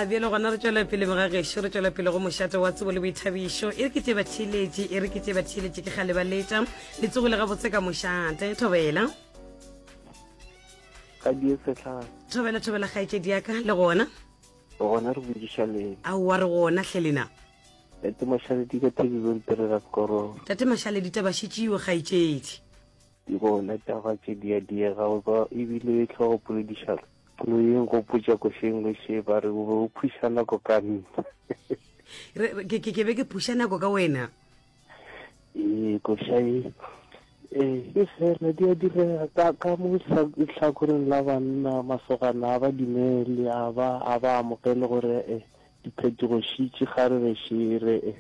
bjale gona re tswela pele mogageso re tswela pele go mošate wa tsebo le boithabišo e re ke tse batheeletše e re ke tse batheeletše ke ga lebaletša le tsogo le gabotse ka mošate thobela thobela thobela gaetse diaka le gona gona re bojiša le aowa re gona tlhelena tate mašaledi ka thebibonterera korong tate mašaledi taba šetšeo gaetsedi gona taba tše diadiega goba ebile tlhogopoledišalo Lo e nkgopotša košeng le še ba re o be o phuša nako ka nna. Re- re- ke- ke ke be ke phuša nako ka wena Ee, koša e ee e fela di a direga ka ka mo sa- lehlakoreng la banna masogana a ba dumele a ba a ba amogele gore e Diphetogo šitši ga re re še re e,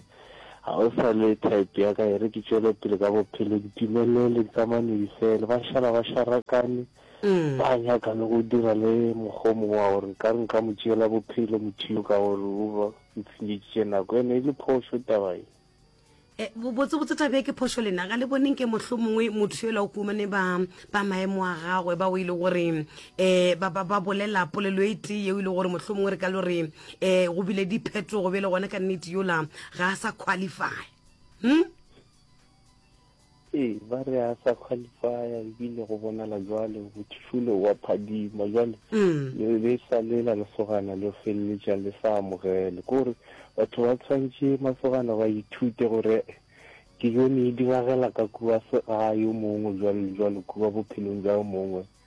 Ga o sa le type ya ka e re ke tšwele pele ka bophelo, ke timelele, ke tsamaya medifele. Ba šala ba šarakane, ba nyaka le go dira le mokgwa o mongwe wa gore nkare nka mo tšeela bophelo motho yo ka gore o ba o tshenyeditše nako. Ene e le phošo taba ye. Eh, botsebotse tabe ke phošo lena ga le boneng ke motlho mongwe motho yola o kumane ba ba maemo a gagwe ba o e le gore um eh, ba bolela polelo e tee yeo e le gore motlho mongwe re ka le gore um eh, go bile dipheto go be le gone ka nnete yola ga a sa qualify hm Ee, ba re a sa qualifya ebile go bonala jwalo, o thifile o a phadima. Jwale le be e sa le la lesogana le feleletša le sa amogele. Ke gore batho ba tshwantšhe masogana ba ithute gore dijo ne e diragela ka kua segae yo mongwe jwalo le jwalo kua bophelong bja yo mongwe.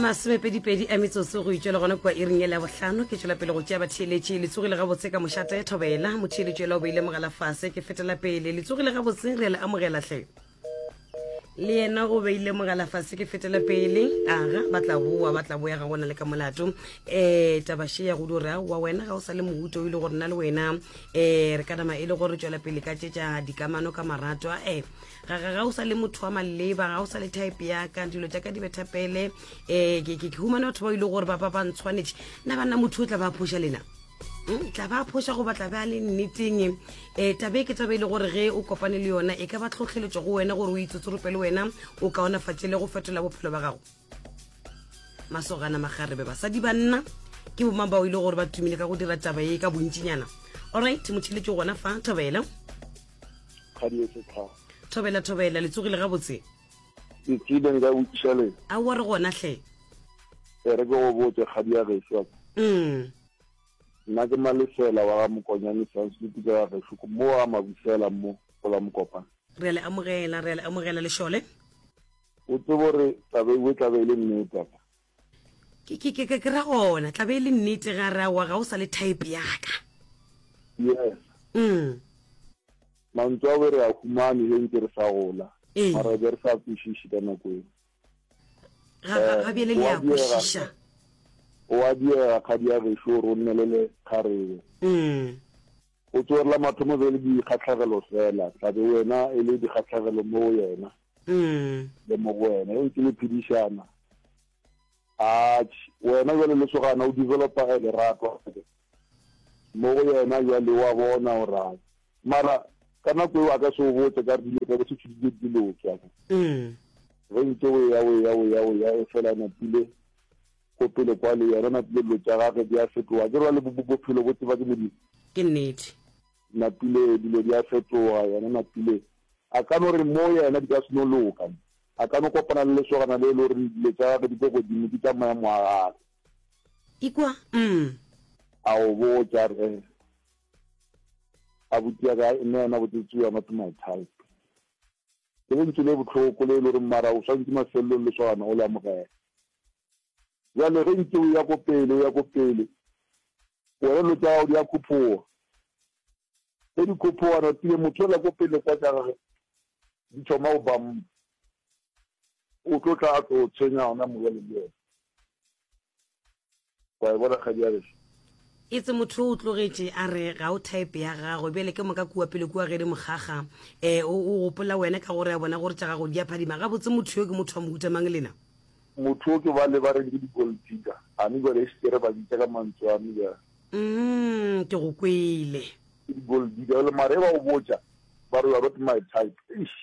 masomepedipedi a metsotso go itšwa le gona kua iring ele ya bohlano ke tšwela pele go tšea batheeletše le tsogile gabotse ka mošate thobela motheeletše ela o beile mogala fase ke fetela pele le tsogile gabotse re le amogelahle le yena o beile mogala fase ke fetela pele aga ba tla boa ba tla boya ga gona le ka molato um tabaše ya go dura wa wena ga o sa le mohuto o ile gore na le wena eh re ka nama e le gore tswela pele ka tšetša dikamano ka maratwa eh ga ga o sa le motho wa maleba ga o sa le type ya ka dilo tša ka di betha pele eh ke ke humane batho ba ile e gore ba ba ba ntshwanetše nna ba nna motho o tla ba phoša lena hmm, tla ba phoša goba tla ba le nneteng eh tabe ke taba e le gore ge o kopane le yona e ka ba tlhotlheletšo go wena gore o itsotsorope le wena o kaonafatše le go fetola bophelo ba gago masogana magarebe basadi banna ke boma bao e le gore ba tumile ka go dira taba ye ka bontšinyana allright motšhile ke gona fa thobela thobela thobela le tsogile gabotse ke tsile nka botšiša le a wa re gona hle e re ke go botse kgadi ya geso mm nna ke malefela wa ga mokonyane sansutu ka ga geso mo wa mabusela mo gola mokopana re a le amogela re a le amogela lešole o tsebo gore tlabe e tlabe e le nnete tata ke ra gona tlabe e le nnete ga ra wa ga o sa le type yaka yes mm mantswe a re a humane he ntse re sa gola mara be re sa kwešiše ka nako eo ga bjele le ya kwešiša o a diega kgadi ya gešo gore o nnelele kgarebe mm. Go tsorela mathomo be le dikgahlagelo fela, tla be wena e le dikgahlagelo mo go yena le mo go wena. E ke le phedišana. A wena jwale lesogana o developa a lerato mo go yena jwale wa bona gore mara ka nako eo a ka se o botse ka re dilo ka se tshudile dilo ke a ge ntse o ya o ya o ya o ya e fela napile Go pele kwa le yena Napile dilo tša gage di a fetoga akere bjale bophelo bo tseba ke Modimo. Ke nnete. Napile dilo di a fetoga yena Napile a ka no re mo yena di ka se no loka a ka no kopana le lesogana le e le gore dilo tša gage di ko godimo ke tša maemo a gage. Ikwa umm. A o botša a re eh abuti ya ka nna yena botsotsi you are not my type. Ke lentšu le bohloko le e le gore mara o swantše mafelelong lesogana o le amogele. Bjale ge ntse o ya ko pele, o ya ko pele, wena dilo tša gago di a khuphoga. Ge di khuphoga, no tsebe motho yola ko pele kwa tša gage di thoma go ba mpa, o tlo tla a tlo tshwenya gona morwalo le yena. Wa e bona kgadi ya geso? Itse motho o tlogetše a re ga o type ya gagwe, bjale ke moka kua pele kua ge di mo kgakga. Eh, o, o gopola wena ka gore a bona gore tša gago di a phadima. Gabotse motho yo ke motho wa mohuta mang lena? Motho yo ke bale ba reng ke di-gold digger. A ne bjale e se ke re ba bitša ka mantswe a me bjale. Umm, ke go kwele. Ke di-gold digger bjale mara ge ba go botša ba re you are not my type, eish,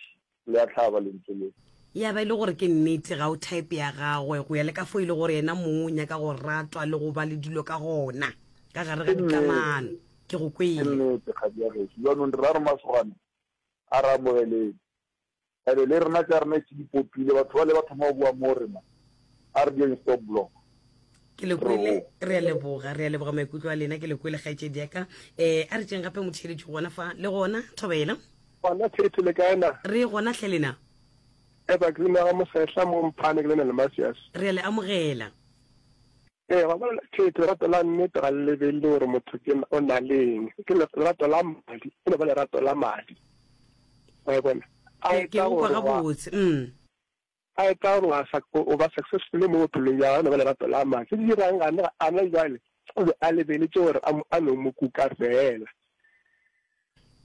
Le a hlaba lentswe le. Ya ba e le gore ke nnete ga o type ya gagwe, go ya le ka fo e le gore yena mong o nyaka go ratwa le go ba le dilo ka gona ka gare ga dikamano. Ke go kwele. Ke nnete kgadi ya geso. Jaanong rra Remasogana a re amogeleng. Ebe le rena tša rena e se di popile. Batho bale ba thoma go bua mo rena. A re dieng stop block. ke le kwele re a leboga re a leboga maikutlo a lena ke le kwele kgaetšedi yaka um eh, a re tšeng gape motheeletši gona fa le gona thobela gona thete le kaena re gona tlhe lena evergreen ga mosehla mo mphane ke lena le masias re a le amogela ee eh, ga bona thete lerato la nnete ga le lebelele gore motho ke o na leng ke lerato la madi e no ba lerato la madi wa e bona a e tsa gore A etla go ba sa, go ba successful mo bophelong bja gagwe le go lerato la Mma. Se se dirago ga ne a na bjale, o be a lebeletše gore a, a no Mo kuka feela.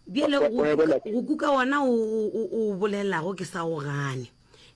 Bjale go, go kuka, go kuka wona o, o, o o bolelago, ke sa o gane.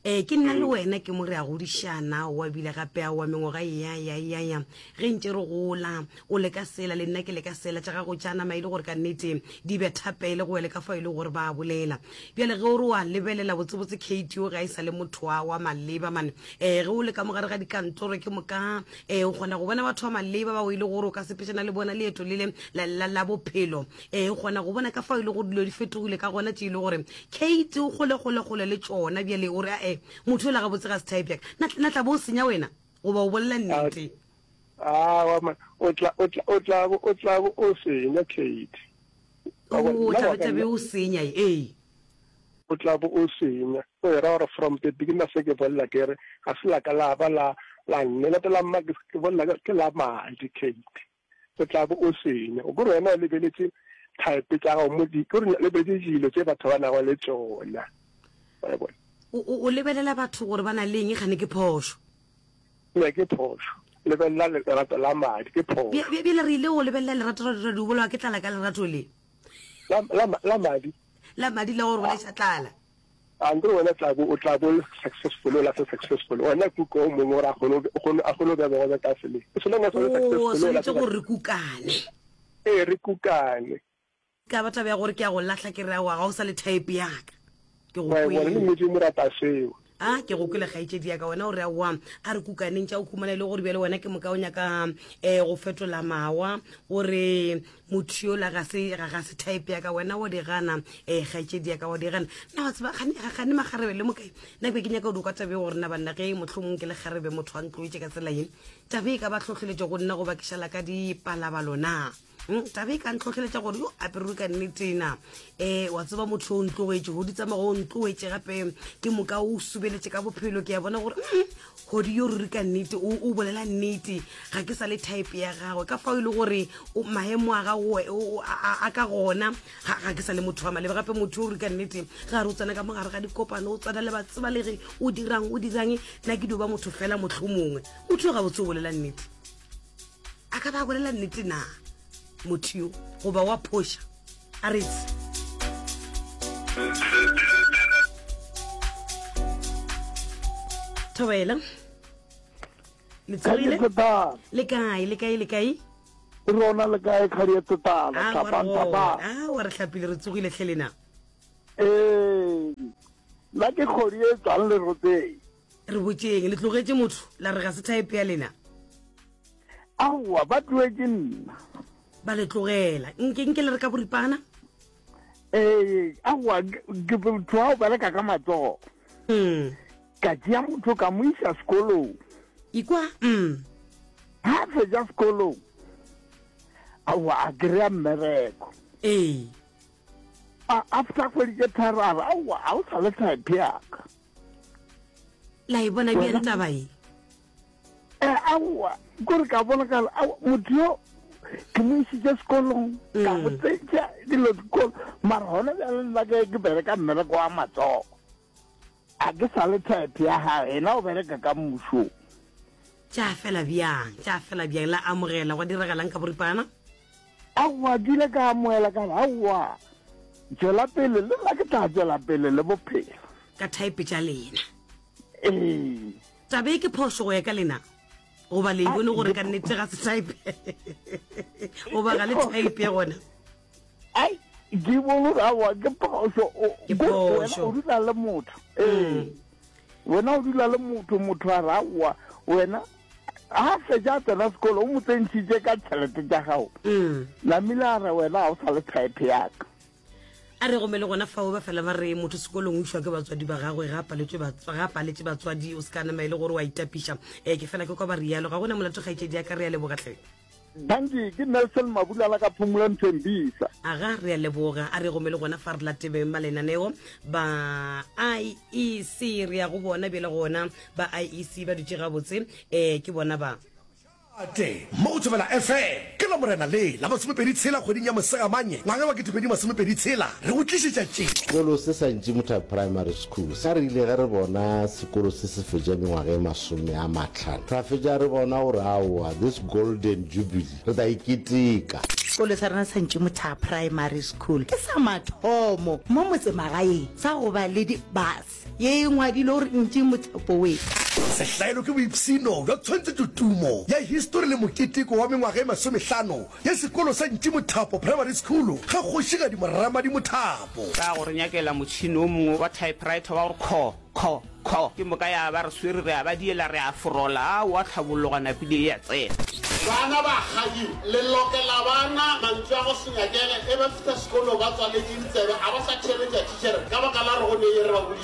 Ee, ke nna le wena, ke mo re a godišana, o a bile gape a wa mengwaga e ya, ya, ya, ya, ge ntše re gola. O le ka sela, le nna ke le ka sela, tša gago tša nama e le gore kannete di betha pele go wele ka fao e lego gore ba a bolela. Bjale ge o re o a lebelela, botsebotse Katie o ge a e sa le motho wa, wa maleba, man. Ee, ge o le ka mo gare ga dikantoro, ke moka, ee, o kgona go bona batho ba maleba bao e le gore o ka sepetšana le bona leeto le le, la, la, la bophelo. Ee, o kgona go bona ka fao e le gore dilo di fetogile ka gona, tše e le gore Katie o kgole, kgole, kgole le tšona. Bjale o re, A-e, motho yola gabotse ga se type ya ka. Na, na tla bo o senya wena? Goba o bolela nnete? Aowa, man. O tla, o tla, o tla bo, o tla bo o senya, Katie. Ka gobane o nna tlabe wa ka tlabe nna. o senya e ee. O tlabe o senya. O e ra gore from the beginning na se ke bolela ke re ga se la ka la ba la la nne la tla mma ke ke bolela ke ke la madi Kate. O tlabe o senya. O kore wena o lebeletse type tsa gago mo di kore lebeletse dilo tse batho ba nago le tsona. Wa e bona? O o o lebelela batho gore ba na le eng e kgane ke phošo. Eya, ke phošo. Lebelela lerato la madi, ke phošo. Bjale re ile go lebelela lerato la dira di bolawa ke tlala ka lerato le. La, la, la madi. La madi la go roleša tlala. Andre wena tla bo o tla bo successful o la se successful wena kuka o mongwe gore a kgone a kgone a kgone go bego be ka sele so long as o le successful o la se gore kukane ee re kukane Ka ba taba ya gore ke a go lahla ke re aowa ga o sa le type ya ka. Ke go Kgwebo re le kwele. metse mo rata seo. A, ke go kwele kgaetšedi ya ka wena o re aowa a re kukaneng tša o humana e le gore bjale wena ke moka o nyaka um go fetola mawa o re motho yola ga se ga ga se type ya ka wena wa di gana um kgaetšedi ya ka wa di gana. Nna wa tseba gane ga- gane makgarebe le mokae nna ke be ke nyaka go di kwa taba e gore na banna ge mohlomong ke le kgarebe motho a ntloetše ka tsela ye taba e ka ba hlohleletša go nna go bakiša la ka dipalabalo na. Hmm, tabe e ka ntlhotlheletša gore yo apererwe ka nnetena um eh, wa tseba motho o ntlogetše godi tsamago o ntlogetše gape ke moka o subeletše ka bophelo ke ya bona gore hmm, godi yo ruri ka nnete o bolela nnete ga ke sa le type ya gagwe ka fao e le gore maemo a gago a ka gona ga ke sa le motho wa malebe gape motho o ruri ka nnete ga re o tsena ka mogare ga dikopano o tsena le batsebalege o dirang o dirang na ke dio ba motho fela motlho mongwe motho yo gabotse o bolela nnete a ka ba bolela nnete na motho yo goba wa phoša a retse thobela le tsogile le kae le kae le kae rona le kae kgadi ya tsetala ah, tlhapanthapaa ah, wa re tlhapile re tsogile tlhelena ee nna ke kgodi e tswang le rotseng Re botšeng, le tlogetše motho, la re ga se thaepe ya lena? Aowa, ba tlogetše nna. Ba le tlogela. Nke, nke le re ka boripana? Ee, aowa, ke motho wa go bereka ka matsogo. Mm. Ka tšea motho ka mo isa sekolong. Ikwa, mm. Ha a fetša sekolong, aowa, a kry-a mmereko. Ee. A, after kgwedi tše tharo a re, aowa, ga o sa le thaepe yaka. la e bona bjang taba e eh, aowa kore ka bonagala motho yo ke mo isitse sekolong ka mm. botsetša dilo dikolo mara gona bjale nna ke ke bereka mmereko wa matsogo a ke sa le type ya gage ena o bereka ka mmušong tša fela bjang tša fela bjang la amogela gwa diregelang ka boripana Aowa, ke ile ka amohela ka re, Aowa, tšwela pele, le nna ke tla tšwela pele le bophelo. Ka thaepe tša lena. Ee. Taba e ke phošo go ya ka lena? Goba le e bone gore ka nnete ga se thaepe? Goba ga le thaepe gona? Ai, ke bone gore aowa, ke phošo. Ke phošo. Wena o dula le motho. Ee. Mm. Wena o dula le motho, motho a re, Aowa, wena a fetša a tsena sekolo o mo tsentšhitše ka tšhelete tša gago mm. namile a re wena ga o sa le type yaka a re gome le gona fao ba fela ba re motho sekolong o išwa ke batswadi ba gagwe ga a paletse batswadi o se ka nama e le gore wa itapiša um ke fela ke kwa ba rialo ga gona molato kgaitšedi ya ka re ya lebogatlhe Danki, ke Nelson Mabulala ka Phumula Nthembisa. Aga, re a leboga. A re gome le gona fa re latebeng ba lenaneo ba IEC re ya go bona bjele gona ba IEC ba dutše gabotse eh ke bona ba Ate, mo go Thobela FM. Ke Lamorena le la masomepedi tshela kgweding ya Mosegamanye ngwaga wa ketepedi masomepedi tshela re go tlišetša tše. Sekolo se sa Ntšimutha Primary School. Sa re ile ge re bona sekolo se se fetša mengwaga e masome a matlhano, ra fetša re bona gore aowa, this golden jubilee re tla e keteka. Sekolo sa rena sa Ntšimutha Primary School ke sa mathomo mo motsemagaeng sa go ba le di bus ye e ngwadilwe gore Ntšimutha Poets. Sehlaelo ke boipshino bja tshwantshetšotumo ya histori le moketeko wa mengwaga e masomehlano ya sekolo sa Ntšimothapo Primary School ga Kgošigadi Moramadi Mothapo. Ra go re nyakela motšhini o mongwe wa typewriter wa gore kho, kho, kho. Ke moka ya ba re swere, re a ba diela, re a forola. A wa tlhabologa napile e a tsena. Bana ba kgadi le lokela ba na mantšu a go se nyakele, e ba fihla sekolo ba tswaletše ditsebe, a ba sa theeletša thitšhere ka baka la gore go ne e re ba boditše.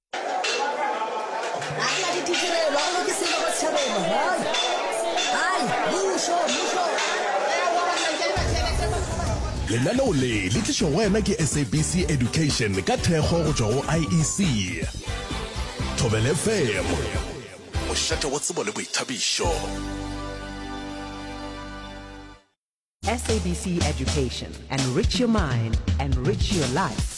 Lenaneo le le tlišwa go wena ke SABC Education ka thekgo go tšwa go IEC. Thobela FM, mošate wa tsebo le boithabišo. SABC Education. Enrich your mind, enrich your life.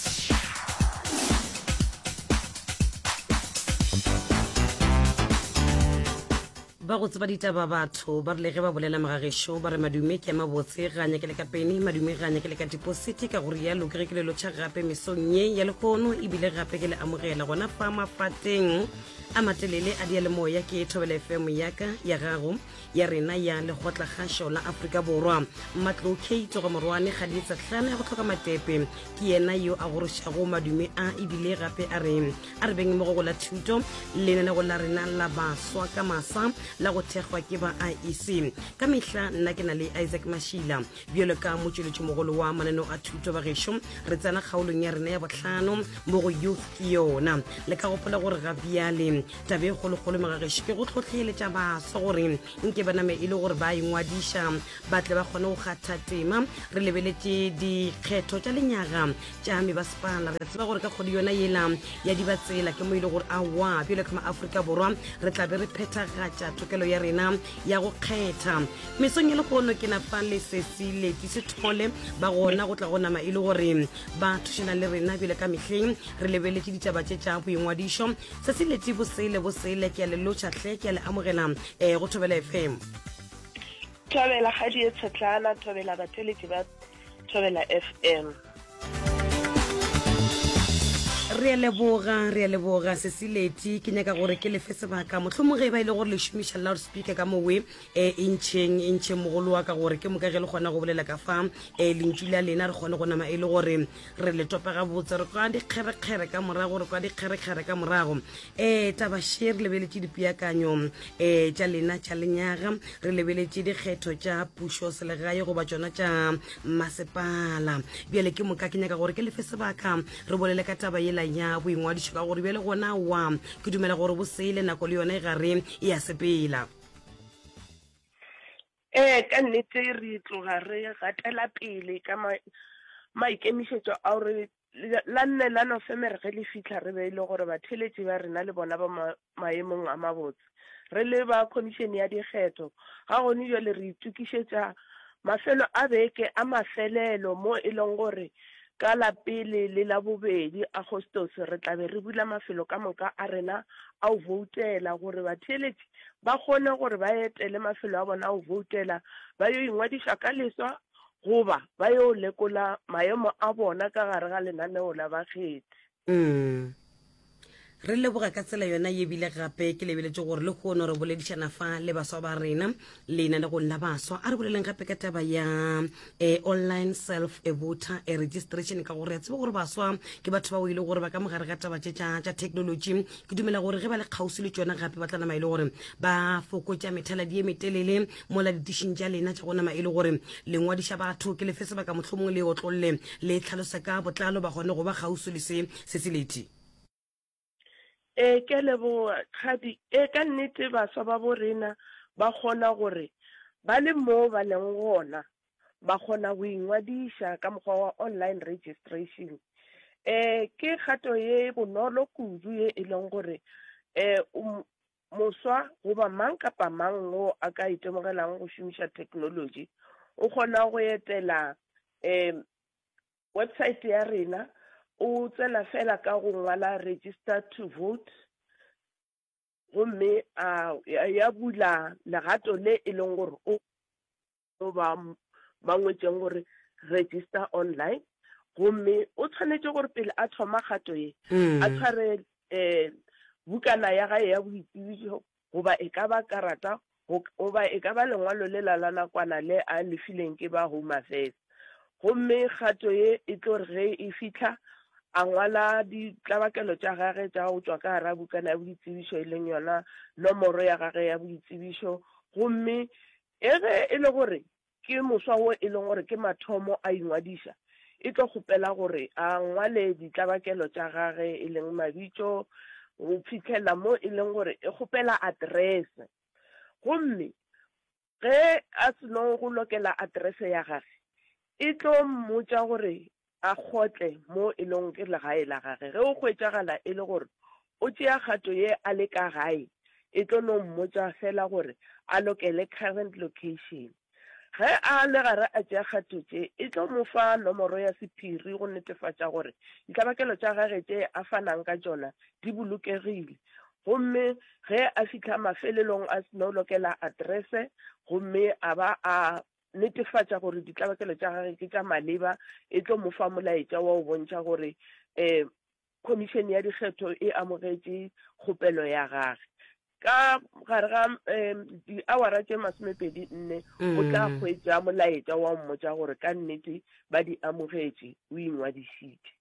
ba go tseba ditaba batho ba rile ge ba bolela mogagešo ba re madume ke a mabotse ga nyake le ka pene madume ga nyake le ka dipositi ka gore yalo ke re ke lelotšha gape mesong ye ya lehono ebile gape ke le amogela gona fa mapateng a matelele a diyalemoya ke thobela fm yaka ya gago ya rena ya lekgotlakgašo la Afrika Borwa. Matlou Kate go morwane ga di etsa hlana ya go tlhoka matepe. Ke yena yo a gorošago madume a ebile gape a re a re beng mo go la thuto lenaneo la rena la baswa ka masa la go thekgwa ke ba IEC. Ka mehla nna ke na le Isaac Mashila bjalo ka motšweletši mogolo wa mananeo a thuto ba gešo re tsena kgaolong ya rena ya bohlano mo go youth ke yona le ka gopola gore ga bjale taba e kgolokgolo magageši ke go tlhotlheletša baswa gore nke ba name e le gore ba ingwadiša ba tle ba kgone go kgatha tema re lebeletše dikgetho tša lenyaga tša mebasepala re tseba gore ka kgodi yona yela ya di batsela ke mo e le gore awa bjale ka maaforika borwa re tlabe re phethagatša thokelo ya rena ya go kgetha mesong e le gono ke nafa lesesi leti se thole ba gona go tla go nama e le gore ba thušana le rena bjale ka mehleng re lebeletše ditaba tše tša boingwadišo tsatsi leti bosele bosele ke a le lotšha hle ke a le amogela um go thobela fm thobela ga di e tshetlana thobela batheletši ba thobela fm re a leboga re a leboga sesileti ke nyaka gore ke lefe sebaka mohlomong ge e ba e le gore le šomiša loud speaker ka mowe um e ntšheng e ntšheng mogolo wa ka gore ke moka ge le kgona go bolela ka fa um lentšu la lena re kgone go nama e le gore re le topa gabotse re kwa dikgerekgere ka morago re kwa dikgerekgere ka morago um eh, tabashe re lebeletše dipeakanyo um eh, tša lena tša lenyaga re lebeletše dikgetho tša pušo selegae goba tšona tša masepala bjale ke moka ke nyaka gore ke lefe sebaka re bolele ka taba yela ya boingwadišo ka gore bjale gona wa ke dumela gore bosele nako le yone e gare e ya sepela Ee, ka nnete re tloga re gatela pele ka ma, maikemišetšo ao re, la, la nne la Nofemere ge le fihla re be e le gore batheeletši ba rena le bona ba ma, maemong a mabotse. Re le ba Khomišene ya Dikgetho, ga gone bjale re itokišetša mafelo a beke a mafelelo mo e lego gore Ka la pele le la bobedi Agostose re tla be re bula mafelo ka moka a rena a go boutela gore batheeletši ba kgone gore ba etele mafelo a bona a go boutela ba yo ingwadiša ka leswa goba ba yo lekola maemo a bona ka gare ga lenaneo la bakgethi. Umm. Re leboga ka tsela yona ye bile gape ke lebeletše gore le kgono re boledišana fa le baswa ba rena lena le gonna baswa a re boleleng gape ka taba ya eh, online self voter eh, registration ka gore ya tseba gore baswa ke batho ba o e le gore ba ka mogare ga taba tše tša tša technology ke dumela gore ge ba le kgauswi le tšona gape ba tla nama e le gore ba fokotša methaladi ye metelele mola ditišing tša lena tša go nama e le gore le ngwadiša batho ke lefe sebaka mohlomongwe le otlolle le tlhalosa ka botlalo ba gone go ba kgauso le se se seleti e ke leboa kgadi e ka nnete baswa ba bo rena ba kgona gore ba le mo ba leng gona ba kgona go ingwadiša ka mokgwa wa online registration eh ke kgato ye bonolo kudu ye e leng gore eh um, Moswa goba mang kapa mang yo a ka itemogelang go šomiša theknolotši o kgona go etela um website ya rena, o tsena fela ka go ngwala register to vote gomme a ya bula legato le e leng gore o goba ba ngwetšeng gore register online gomme o tshwanetše gore pele a thoma kgato ye a mm. tshware um bukana ya gae ya boitsebišo goba e ka ba karata goba e ka ba lengwalo le la la nakwana le a lefileng ke ba home affairs gomme kgato ye e tlo re ge e fitlha a ngwala ditlabakelo tša gage tša go tswa ka gara bukana ya boitsebišo e leng yona nomoro ya gage ya boitsebišo gomme Ge ge e le gore ke moswa wo e lego gore ke mathomo a ingwadiša, e tlo kgopela gore a ngwale ditlabakelo tša gage e leng mabitso go fihlelela mo e leng gore e kgopela aterese. Gomme ge a seno go lokela aterese ya gage, e tlo mmotša gore a kgotle mo e lego ke legae la gage. Ge o hwetšagala e le gore o tšea kgato ye a le ka gae, e tlo no mmotša fela gore a lokele current location. Ge a le gare a tšea kgato tše, e tlo mo fa nomoro ya sephiri go netefatša gore ditlabakelo tša gage tše a fanang ka tšona di bolokegile. Gomme ge a fihla mafelelong a no lokela aterese gomme a ba a netefatša gore ditlabakelo tša gage ke tša maleba e tlo mo fa molaetša wa go bontšha gore um khomišene ya dikgetho e amogetše kgopelo ya gage ka gare ga um diawara tše masomepedi nne o tla mm. kgwetsa molaetša wa mmotsa gore ka nnete ba di amogetše o ingwadišitše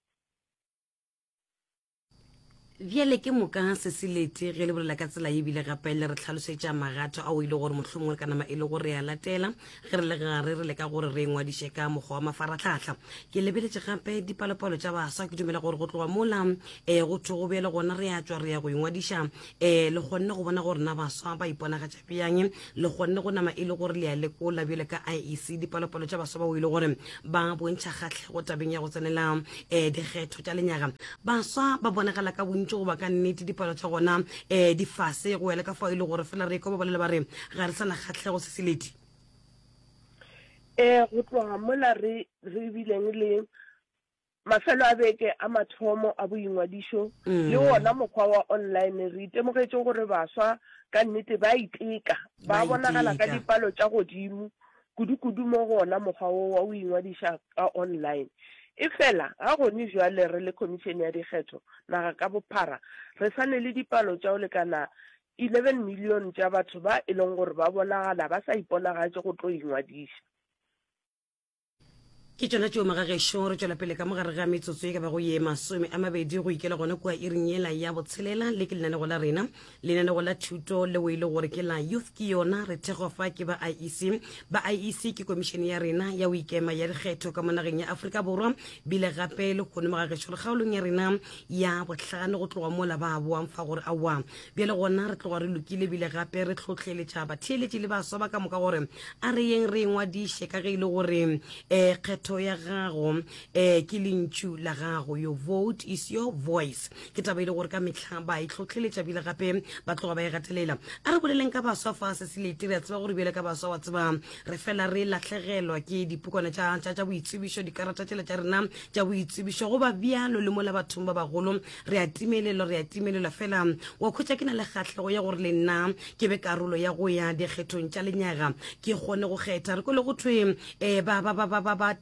bjale ke moka se se lete ge le bolela ka tsela e bile gape le re tlhalosetša magato ao e le gore mohlomongwe ka nama e le gore ya latela ge re le gare re leka gore re ngwadiše ka mokgwa wa mafaratlhatlha ke lebeletše gape dipalopalo tša baswa ke dumela gore go tloga mola um go thwe go bjale gona re a tswa re ya go ingwadiša um le kgonne go bona gore na baswa ba iponagatša bjang le kgonne go nama e le gore le ya lekola bjale ka iec dipalopalo tša baswa bao e le gore ba bontšha kgatlhego tabeng ya go tsenela um dikgetho tša lenyaga baswa ba bonagala ka bontši goba ka nnete dipalo tša gona um eh, di fase go ya le ka fao e le gore fela re ekwa ba bolela ba re ga re sana kgatlhego se se ledi um go tloga mola re bileng le Mafelo a beke a mathomo a boingwadišo le wona mokgwa wa online, re itemogetše gore baswa ka nnete ba a iteka, ba a bonagala ka dipalo tša godimo, kudu-kudu mo go wona mokgwa wo wa go ingwadiša ka online. Efela, ga gone bjale re le Khomišene ya Dikgetho naga ka bophara, re sa ne le dipalo tša go lekana 11 milione tša batho ba e lego gore ba bonagala ba sa iponagatše go tlo ingwadiša. ke tšona tšeo magagešo re tšwela pele ka mogare ga metsotso e ka bago ye masome a mabedi go ikela gona kua iring yela ya botshelela le ke lenanego la rena lenanego la thuto leo e le gore ke la youth ke yona re thego fa ke ba iec ba iec ke komišene ya rena ya o ikema ya dikgetho ka mo nageng ya aforika borwa bile gape le kgone magagešo le kgaolong ya rena ya bohlano go tloga mola ba boang fa gore aowa Bjale gona re tloga re lokile ebile gape re tlhohleletša batheeletši le baswa ba ka moka gore a re yeng re e ngwadiše ka ge e le gore um kgetho ya gago um ke lentšu la gago your vote is your voice ke taba e le gore ka mehla ba e tlhohleletša bile gape ba tloga ba e gatelela a re boleleng ka baswa fa se se lete re a tseba gore bjale ka baswa wa tseba re fela re lahlegelwa ke dipukwana tša boitsebišo dikarata tšela tša rena tša boitsebišo go ba bjalo le mola bathong ba bagolo re a timelelwa re a timelelwa fela wa khwetša ke na le kgahlego ya gore le nna ke be karolo ya go ya dikgethong tša lenyaga ke kgone go kgetha re kwele go thwe um eh, ba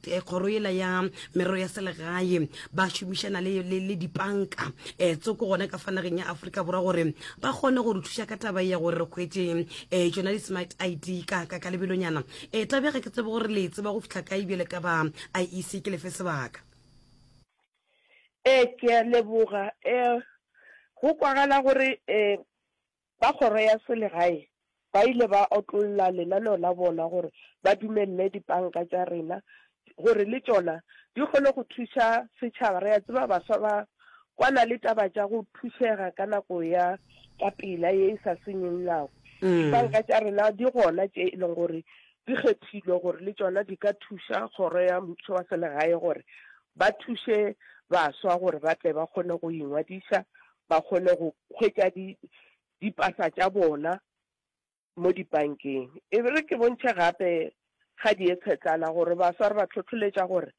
eh, kgoro yela ya merero ya selegae ba šomišana le dipanka um tsoko gona ka fanageng ya aforika borwa gore ba kgone go re thuša ka taba ya gore re kgwetse um eh, tsona di-smart id ka ka lebelonyana um tabega ke tsebe gore le tseba go fitlha ka ebjele ka ba iec ke lefe sebaka Ee, ke a leboga. Um Go kwagala gore um ba kgoro ya selegae ba ile ba otlolla lenaneo la bona gore ba dumelele dipanka tša rena gore le tšona di kgone go thuša setšhaba. Re a tseba baswa ba kwana le taba tša go thušega ka nako ya ka pela ye e sa senyeng nako. Dipanka tša rena di gona tše e leng gore di kgethilwe gore le tšona di ka thuša Kgoro ya Mmušo wa Selegae gore ba thuše baswa gore ba tle ba kgone go ingwadiša, ba kgone go hwetša di, dipasa tša bona mo dipankeng. E re ke bontšhe gape ga dietshetlana gore baswa re ba hlohloletša gore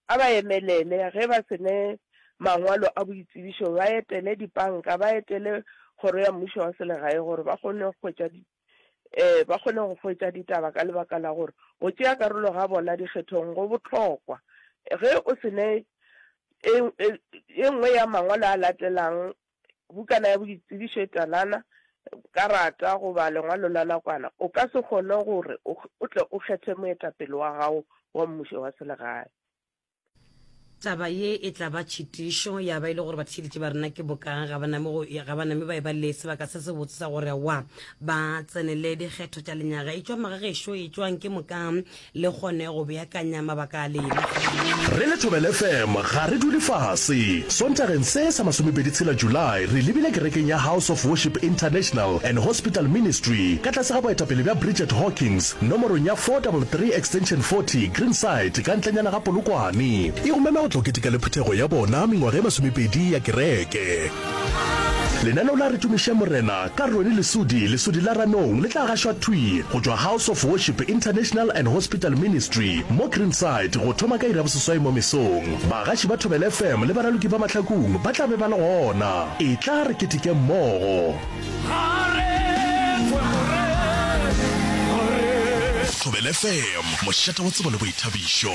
a ba emelele ge ba se ne mangwalo a boitsebišo, ba etele dipanka, ba etele Kgoro ya Mmušo wa Selegae gore ba kgone go hwetša um ba kgone go hwetša ditaba ka lebaka la gore go tšea karolo ga bona dikgethong go bohlokwa ge o se ne e, e, e nngwe ya mangwalo a latelang bukana ya boitsebišo e talana karata goba lengwalo la nakwana o ka se kgone gore o tle o kgethe moetapele wa gago wa mmušo wa selegae taba ye e tla ba tšhitišo ya ba e le gore batšhidiši ba rena ke bokang ga ba name ba e ba le sebaka se se botse sa gore wa ba tsenele dikgetho tša lenyaga e tšwa magagešo e tšwang ke mokang le kgone go beakanya mabaka a lena re le thobele fm ga re dule fase sontageng se sa masomepedi tshela july re lebile kerekeng ya house of worship international and hospital ministry ka tlase ga boetapele bja bridget hawkins Nomorong ya 433 extension 40, Greenside, ka ntlenyana ga Polokwane. E go mema go tla go keteka le phuthego ya bona mengwaga ye masomepedi ya kereke. Lenaneo la Re Tumišeng Morena ka Ronnie Lesudi, Lesudi la Ranong, le tla gašwa thwi go tšwa House of Worship International and Hospital Ministry mo Greenside go thoma ka iri ya boseswai mo mesong. Bagaši ba Thobela FM le baraloki ba Mahlakung ba tla be ba le gona. Etla re ketekeng mmogo. Thobela FM, mošate wa tsebo le boithabišo.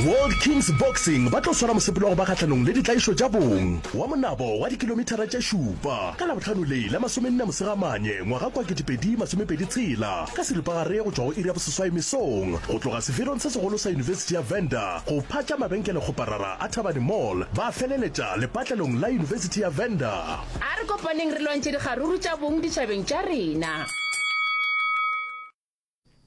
World Kings Boxing ba tlo swara mosepelo wa go ba kgahlanong le ditlaišo tša bong wa monabo wa dikilomithara tše šupa ka Labohlano le la masomenne Mosegamanye ngwaga kua ketepedi masomepedi tshela ka seripagare go tšwa go iri ya boseswai mesong go tloga seferong se segolo sa Yunibesithi ya Venda go phatša mabenkele kgoparara a Thabane Mall ba feleletša lepatlelong la Yunibesithi ya Venda. A re kopaneng re lwantšhe dikgaruru tša bong ditšhabeng tša rena.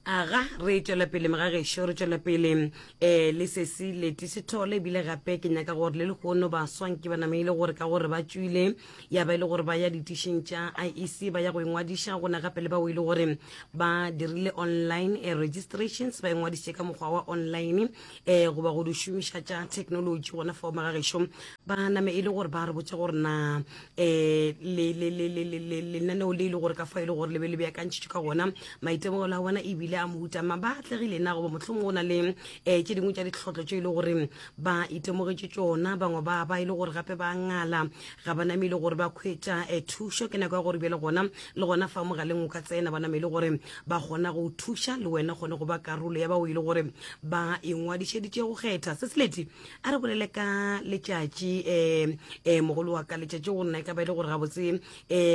Aga re tšwela pele mga gešo re tšwela pele eh le sesi leti sethole ebile gape ke nyaka gore le lehono baswa nke ba nameile gore ka gore ba tšwile ya ba ile gore ba ya ditišing tša IEC ba ya go ingwadiša gona gape le bao ile gore ba dirile online eh, registrations ba ingwadiše ka mokgwa wa online um goba go di šomiša tša technology gona fao magagešo ba name e le gore ba re botse gore na um lenaneo le e le gore ka fa e le gore le be le beakantšhitšwe ka gona maitemogelo a bona ebile a mohuta ma ba atlegile na goba mohlomong go na le um tše dingwe tša ditlhotlho tše e le gore ba itemogetše tsona bangwe ba ba e le gore gape ba ngala ga ba name e le gore ba khwetša um thušo ke nako ya gore bjale gona le gona fa mogaleng o ka tsena ba name e le gore ba kgona go o thuša le wena kgone go ba karolo ya bao e le gore ba ingwadišeditše go kgetha se seleti a re bolele ka letšatši um um mogolo wa ka letšatši go nna e ka ba e le gore gabotse um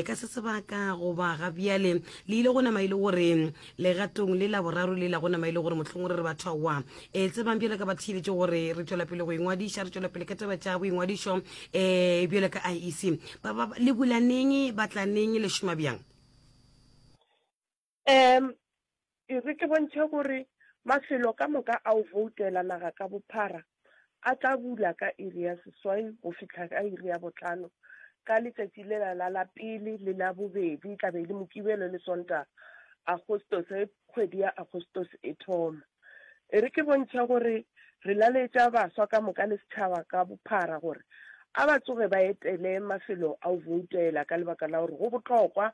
ka se sebaka goba ga bjale le ile go nama e le gore legatong le la boraro le la go nama e le gore mohlong re re batho aowa um e tsebang bjale ka ba theeletše gore re tšwela pele go ingwadiša re tšwela pele ka taba tša boingwadišo um eh, bjale ka iec ba ba le bulaneng ba tlaneng le šoma bjang Um E re ke bontšhe gore mafelo ka moka a o voutela naga ka bophara a tla bula ka iri ya seswai go fihla ka iri ya botlhano ka letšatši lela la la pele le la bobedi tla be e le mokibelo le sonta agostos ge kgwedi ya agostos e thoma e re ke bontšha gore re laletša baswa ka moka le setšhaba ka bophara gore a ba tsoge ba etele mafelo a o voutela ka lebaka la gore go bohlokwa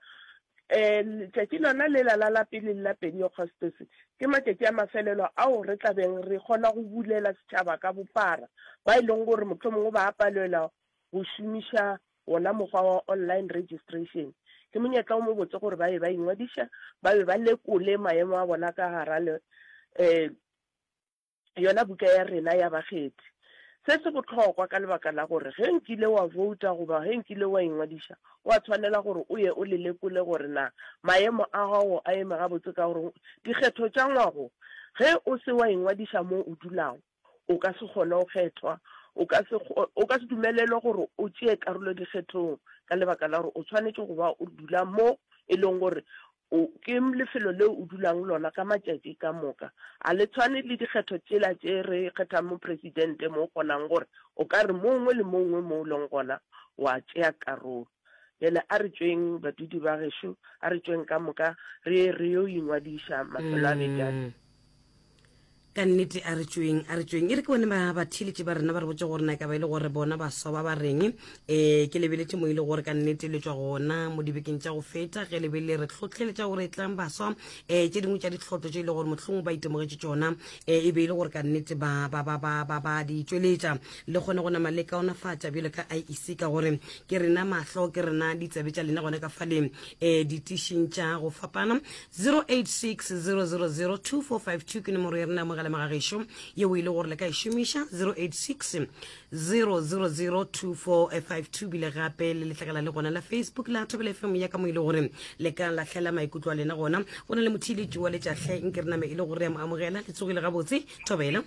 Ee, letšatši lona lela la la pele la Pentekostese ke matšatši a mafelelo ao re tla beng re kgona go bulela setšhaba ka bophara ba e leng gore mohlomongwe ba a palelwa go šomiša wona mokgwa wa online registration. Ke monyetla o mobotse gore ba be ba ingwadiša, ba be ba lekole maemo a bona ka gara le um yona buka ya rena ya bakgethi. Se se bohlokwa ka lebaka la gore ge nkile wa vouta goba ge nkile wa ingwadiša, wa tshwanela gore o ye o le lekole gore na maemo a gago a eme gabotse ka gore dikgetho tša ngwago ge o se wa ingwadiša moo o dulago, o ka se kgone go kgethwa, o ka se, o ka se dumelelwe gore o tšee karolo dikgethong ka lebaka la gore o tshwanetše go ba o dula mo e leng gore O, ke lefelo leo o dulago go lona ka matšatši ka moka. A le tshwane le dikgetho tšela tše re kgethang mopresidente mo o kgonago gore o ka re mo ongwe le mo ongwe mo o leng gona o a tšea karolo? Bjale a re tšweng, badudi ba gešo, a re tšweng ka moka re ye re yo ingwadiša mafelo a beke a. ka nnete a re tšweng a re tšweng e re ke bone ba batheletše ba rena ba re botse gore na ka ba e le gore bona baswa ba ba reng um ke lebeletse mo e le gore ka nnete le tswa gona mo dibekeng tša go feta ge lebele re tlhotlheletša gore e tlang baswa um tše dingwe tša ditlhotlo tše e le gore mohlong ba itemogetše tsona um e be e le gore ka nnete ba ba ba ba ba ba di tšweletša le kgone go nama le kaonafatša bjalo ka iec ka gore ke rena mahlo ke rena ditsabe tša lena gona ka faleng um ditišing tša go fapana 0860002452 ke nomoro ya rena ya mogala magagešo yeo e le gore le ka e šomiša 0860002452 bile gape le letlakala le gona la facebook la thobela fm ya ka mo e le gore le ka lahlela maikutlo a lena gona go na le motheeletši wa letšahle nke re name e le gore ya mo amogela le tsogile gabotse thobela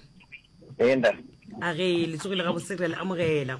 a ge le tsogile gabotse re a le amogela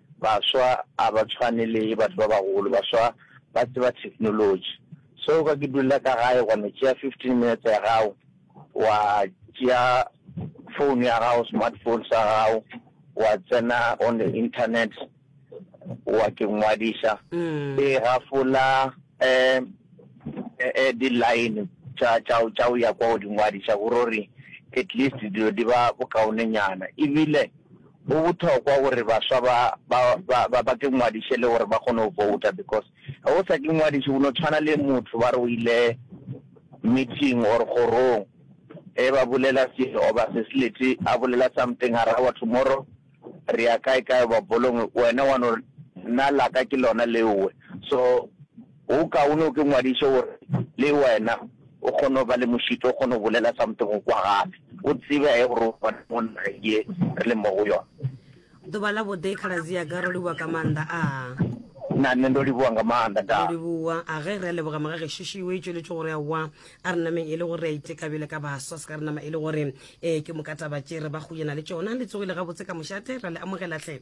Baswa a ba tshwane le batho ba bagolo, baswa ba tseba technology. So o ka ke dulla ka gae wa no tšea fifteen minutes ya gago, wa tšea phone ya gago, smartphone sa gago, wa tsena on the internet, wa ke ngwadiša, e gafola um di-line tša tša tša go ya kwa go di ngwadiša gore at least dilo di ba bokaonenyana ebile. Go bothokwa gore baswa ba ba ba ba ba ke ngwadiše le gore ba kgone go vouta because ge o sa ke ngwadiše o no tshwana le motho ba re o ile meeting or kgorong e ba bolela se oba se se lete a bolela something a rawa tomorrow re ya kae kae ba bolong wena wa no nna laka ke lona leowe so Go kaone o ke ngwadiše gore le wena o kgone go ba le mošito, o kgone go bolela something go kwa gape, o tsebe ge gore o gona mo nageng ye re leng mo go yona. Ḓuvha ḽa vhuḓe khaladzi yaka ro livhuwa ka maanḓa a. Na nṋe ndo livhuwa nga maanḓa nda. Ro livhuwa a ge re a leboga moga gešo šiwe e tšweletše gore a wa a re nameng e le gore re a iteka bjale ka baswa se ka re nama e le gore ee ke mokatabatše re ba go yena le tšona le tsogile gabotse ka mošate ra le amogela hle.